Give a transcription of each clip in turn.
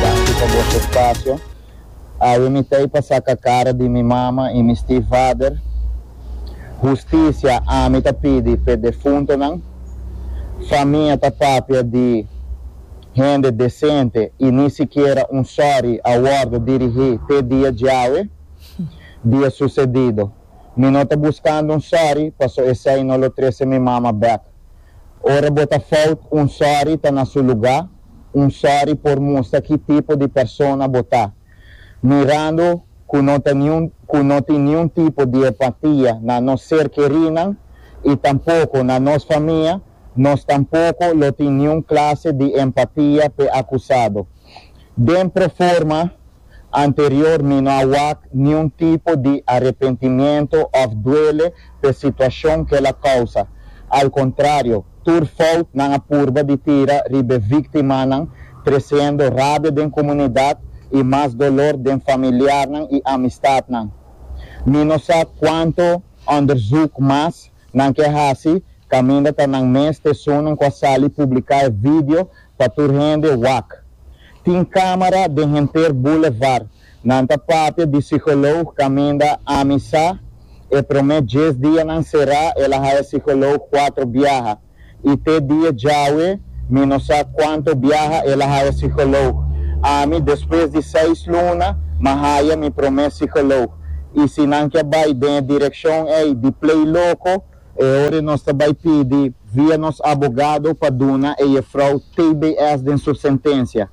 Danki pa boso espasio. Awe mi t'ei pa saka kara di mi mama i mi stiefvader. Hustisia ami ta pidi p'e defuntonan. Famia ta papia di hende desente i ni sikiera un sòri a wòrdu dirigí te dia djawe. Dia susedido. Mi no ta buskando un sòri paso esei no lo trese mi mama bèk. Ora bo ta fout, un sòri ta na su lugá. un sòri por mustra ki tipo di persona bo ta, mirando ku no ta niun ku no tin niun tipo di empatia na nos ser kerinan i tampoko na nos famia, nos tampoko lo tin niun klase di empatia p'e akusado. Den proforma. Anterior mi no a wak niun tipo di arepentimiento of duele p'e situacion k'el a causa. Al contrario, tur fout nan a purba di tira riba e victimanan, treciendo rabia den comunidad y mas dolor den familiarnan y amistadnan. Mi no sa cuanto onderzoek mas Nan ke hasi kaminda ta nan mes te esunnan ku a sali publiká e vidio pa tur hende wak. Tin kámara den henter boulevard. Nan ta papia di sikoloog kaminda ami sa. E promé dies dia nan será el a haya sikoloog kuatro biaha. I te dia djawe mi no sa cuanto biaha el a haya psicoloog. Ami despues di seis luna m'a haya mi prome psicoloog. I si nan ke bay den e direccion ey di play loco, e ora nos ta bay pidi via nos abogado pa duna e jefrouw tbs den su sentencia.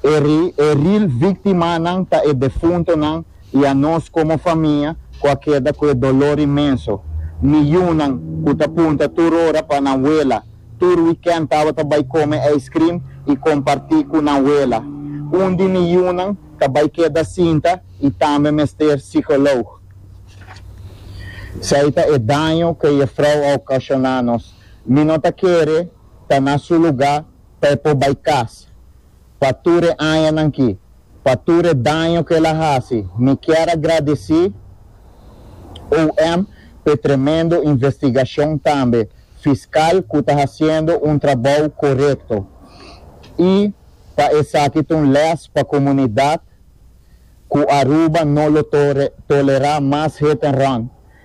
E real victimanan ta e defuntonan i a nos komo famia ku a keda ku e dolor inmenso. Mi yunan ku ta punta tur ora pa nan wela, tur wikènt tabata bai kome ijskrim i kompartí ku nan wela. Un di mi yunan ta bai keda sinta i tambe mester sikoloog. Esei ta e daño ku e yefrou a okashoná nos. Mi no ta kere ta na su lugá pa e por bai kas. pa tur e añanan ki, pa tur e daño ku el a hasi. Mi kier a gradisí OM pa e tremendo investigashon tambe fiskal ku ta hasiendo un trabou korekto i pa esaki ta un lès pa komunidat ku Aruba no lo tolerá mas hit and run.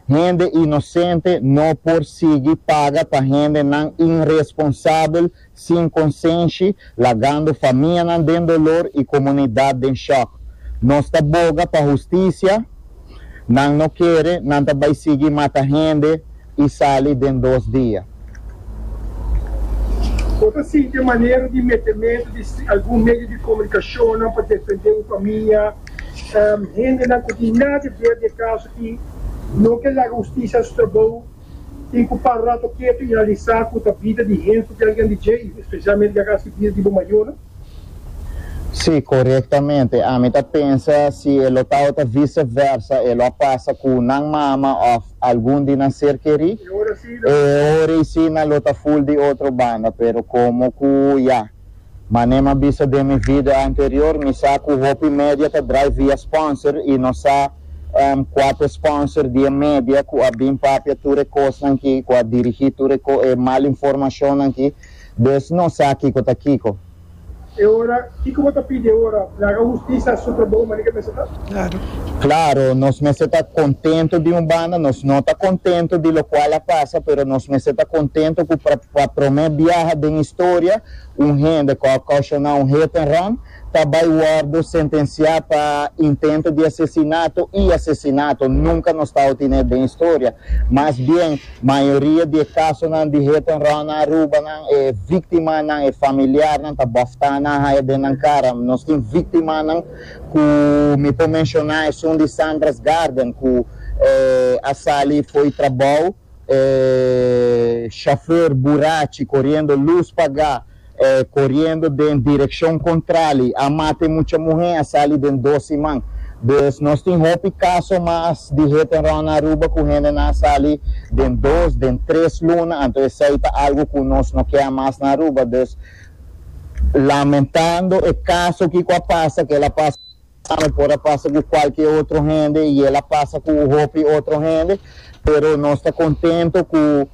Hende inosente no por sigui paga pa hendenan inresponsabel sin konsenshi, lagando famianan den dolor i komunidat den shòk. Nos ta boga pa hustisia, nan no kere nan ta bai sigui mata hende i sali den dos dia. Bo ta sinti e manera di metementu di algun medio di komunikashonnan pa defendé bo famia? Hendenan ku tin na di ver di e kaso aki no ke laga hustisia strobou. Tin ku para rato ketu i analisá ku ta bida di hende ku kel gen di djei, spesialmente Guerra Civil di bo mayonan. Sí, korektamente. Ami ta pensa si e lo ta ota vice versa, e lo a pasa ku nan mama òf algun di nan ser kerí. E ora asina. E ora asina lo ta ful di otro banda, pero komo ku ya. Mane m'a bisa den mi vida anterior mi sa cu hopi media ta drai via sponsor y nos sa um cua cu e sponsor di e media cu a bin papia tur e cosnan ki, cu a dirigi tur e co e mal informacionnan ki, des nos sa kico ta kico. E ora, kico bo ta pidi e ora? Mi haga husticia supra bo mane ke mester ta? Claro, nos mester ta contento di un banda, nos no ta contento di locual a pasa, pero nos mester ta contento cu Pa promé biaha den historia, un hende ku a okashoná un hit and run ta bai wòrdu sentensiá pa intento di asesinato i asesinato. Nunka nos ta outiné den historia. Mas bien, mayoria di e kasonan di hit and run na Aruba nan e víktimanan, e familiarnan ta bòftá nan haya den nan kara. Nos tin víktimanan ku mi por menshoná esun di Sandra's Garden ku a sali fo'i trabou. E shofèr burachi koriendo lus pagá, e koriendo den direkshon kontrali, a mata e mucha muhé, a sali den dos siman. Dus nos tin hopi kaso mas di hit and run na Aruba ku hendenan a sali den dos, den tres luna, anto esei ta algu ku nos no ke a mas na Aruba. Dus lamentando e kaso ki ku a pasa, kel a pasa. Tambe por a pasa cu cualke otro hende y el a pasa cu hopi otro hende, pero nos ta contento cu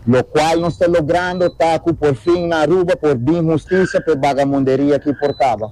locual nos ta logrando ta cu por fin na Aruba por bin husticia p'e bagamunderia aki por caba.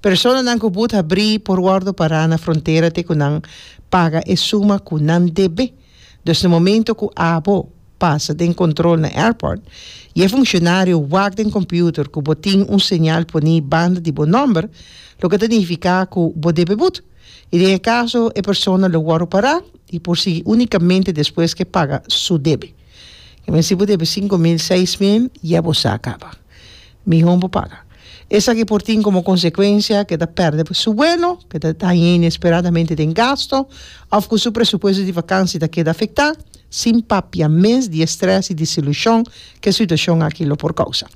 Personanan ku but habrí por wòrdu pará na frontera te ku nan paga e suma ku nan debe. Dus na momentu ku abo pasa den kòntròl na airport i e funshionario wak den kòmpiuter ku bo tin un señal poní banda di bo nòmber, loke ta nifiká ku bo debe but. I den e kaso e persona lo wòrdu pará i por sigui únikamente despues ke paga su debe. Ke men si bo debe sinku mil, seis mil, ya bo sa kaba. Mihó bo paga. Esaki por tin komo konsekuensia ke ta pèrdè su vuelo, ke ta dañ'é inesperadamente den gasto, òf ku su presupuesto di vakansi ta keda afektá, sin papia mes di e strès i desilushon ku e situashon aki lo por kousa.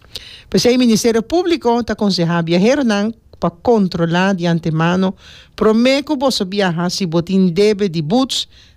P'esei Ministerio Públiko ta konsehá biaheronan pa kontrolá di antemano promé ku boso biaha si bo tin debe di buts,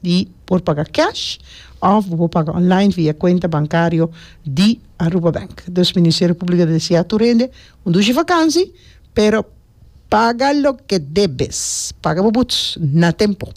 di por paga cash of bo por paga online via cuenta bancario di Aruba Bank. Dus Ministerio Publico ta desea tur hende un dushi vakansi pero paga loke debes, paga bo buts na tempo.